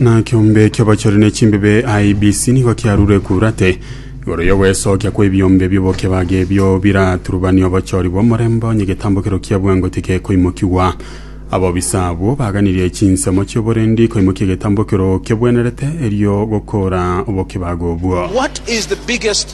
na kiombe ki'obochori ne chimbebe IBC nigo kiarure kurate igoro y'ogwesokia kw'ebiombe bi'obokebage ebio biraturubani obochori bw'omorembe onye getambo kero kia bwango tigekoimokigwa abobisa abwo baganirie chinsemo chi'oborendi koimokia egetambo kero kebwenerete erio gokora obokebage obwo What is the biggest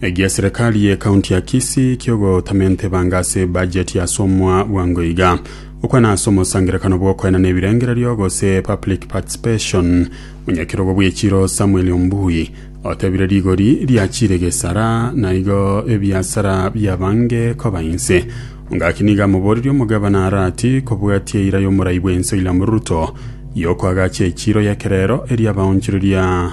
Egia serikali ye kaunti ya Kisii kiogotamenta ebanga ase bajeti asomwa bwango iga. Okwana ase omosangerekano bw'okoenana ebirengererio gose public participation, Monyakerogo bw'echiro Samuel Ombui otebire rigori riachire gesara na igo ebiasara biabange koba inse. Ongaki nigo amoborerie omogabana Arati kobwatia eira y'omorai bw'ense William Ruto y'okoagacha echiro y'ekerero eria abaonchoreria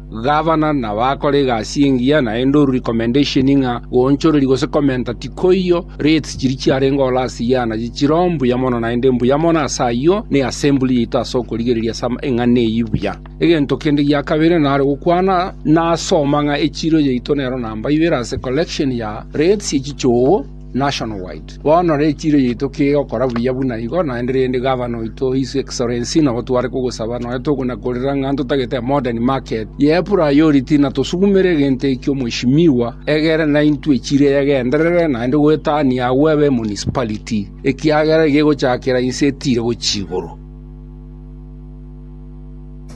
Gavana nabakore egasi engiya naende orue recommendation ng'a goonchoreri gose komenta tikoiyo, rates chiria chiarenge ore ase iye anache chire ombuya mono naende mbuya mono ase ayio na eassembly yaito ase okorigereria ase eng'ana eyio buya. Egento kende gia kabere nare gokwana nase omang'a echiiro yaito nero namba ibere ase collection ya rates ye chichoogo, Nationwide. Bono ree echiiro yaito kegokora buya buna igo, naende rende Gavana oito, His Excellency, nabo tware kogosaba nonya togonakorera ng'a ntotagete a modern market ye priority na tosugumere egento ekio Mweshimiwa egere naintwe echiiro eyegenderere naende goetania agwo ebe municipality ekiagera egegochakera inse etire gochia igoro.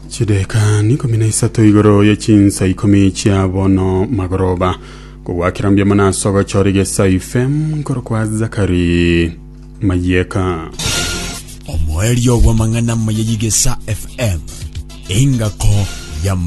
chideka nikumi na isato igoro ye chinsa ikumi chia bono magoroba kogwakera mbuya mono ase ogochora egesayi fm nkoro kwa zakari mayeka omoerio bw'amang'ana maya y'igesa fm engako ya